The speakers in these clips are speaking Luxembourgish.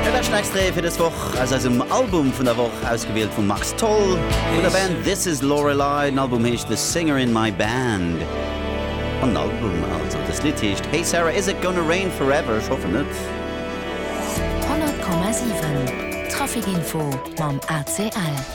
Dat läscht Extrait fir dës Woch aus eisem Album vun der Woch, ausgewielt vum Max Tholl vun der Band This Is Lorelei. Den Album heescht The Singer In My Band. An den Album, also dëst Lidd, heescht Hey Sarah, Is It Gonna Rain Forever? Ech hoffen net. 100,7 Trafic Info mam ACL.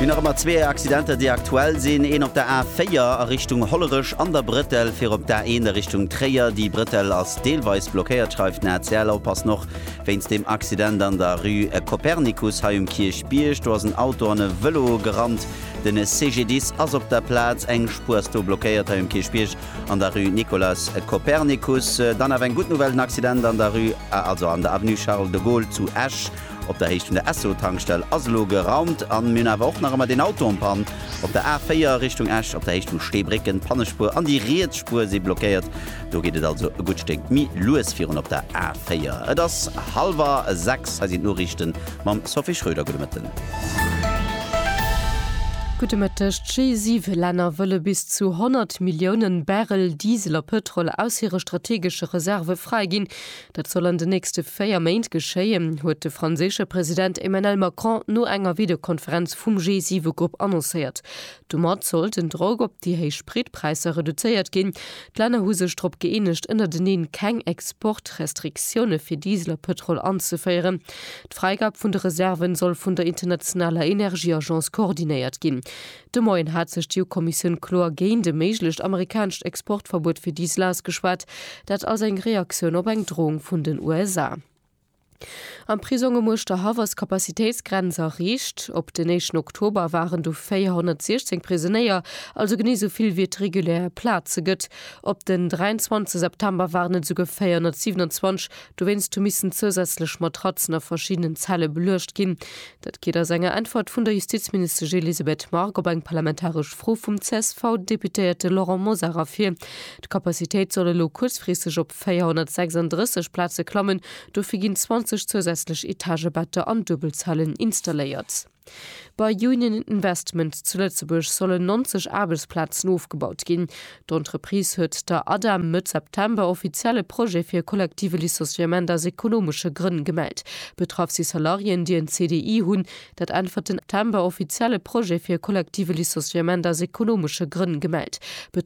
Mir nach ëmmer zwee Accidenter, déi aktuell sinn. Een op der A4 a Richtung Hollerech an der Bretelle fir op d'A1 a Richtung Tréier. Déi Bretelle ass deelweis blockéiert, schreift den ACL. Oppassen och wéinst deem Accident an der Rue Copernicus hei um Kierchbierg. Do ass en Auto an e Vëlo gerannt. De CGDIS ass op der Plaz. Eng Spuer ass do blockéiert hei um Kierchbierg an der Rue Nicolas Copernicus. Dann awer eng gutt Nouvelle, den Accident an der Rue, also an der Avenue Charles de Gaulle zu Esch. Op der Héicht vun der Esso-Tankstell ass elo geraumt an mir hunn awer och nach ëmmer deen Auto en Panne. Op der A4 Richtung Esch op der Héicht vu Steebrécken, d'Pannespuer an déi riets Spuer si blockéiert. Do geet et also e gutt Stéck méi lues virun op der A4. Et ass hallwer sechs, hei sinn d'Noriichten mam Sophie Schröder. Gudde Mëtten. Gudde Mëtteg. D'G7 Länner wëlle bis zu 100 Milliounen Barrel Diesel a Pëtrol aus hire strategesche Reserve fräiginn. Dat soll an den nächste véier Méint geschéien, huet de franséische President Emmanuel Macron no enger Videokonferenz vum G7-Grupp annoncéiert. Domat soll den Drock op déi héich Spritpräisser reduzéiert ginn. D'Länner hu sech drop gëeenegt, ënnerteneen keng Exportrestriktioune fir Diesel a Pëtrol anzeféieren. D'Fräigab vun de Reserven soll vun der internationaler Energieagence koordinéiert ginn. De Moien hat sech d'EU-Kommissioun kloer géint e méiglecht amerikanescht Exportverbuet fir Diesel ausgeschwat, dat als eng Reaktioun op eng Droung vun den USA. Am Prisong um Uerschterhaff ass d'Capacitéitsgrenz erreecht. Op den éischten Oktober waren do 416 Prisonéier, also genee esou vill wéi et regulär Plaze gëtt. Op den 23 September waren et esouguer 427. Dowéinst hu missen zousätzlech Matratzen a verschiddenen Zelle beluecht ginn. Dat geet aus enger Äntwert vun der Justizministesch Elisabeth Margue op eng parlamentaresch Fro vum CSV-Deputéierte Laurent Mosar ervir. D'Capacitéit soll elo kuerzfristeg op 436 Plaze klammen. Dofir ginn 20 zousätzlech Etagebetter an Duebelzellen installéiert. Bei Union Investment zu Lëtzebuerg sollen 90 Aarbechtsplazen ofgebaut ginn. D'Entreprise huet der ADEM Mëtt September offiziell e Projet fir e kollektive Licenciement aus ekonomesche Grënn gemellt. Betraff si Salariéen, déi en CDI hunn. Dat äntwert den September offiziell e Projet fir e kollektive Licenciement aus ekonomesche Grënn gemellt.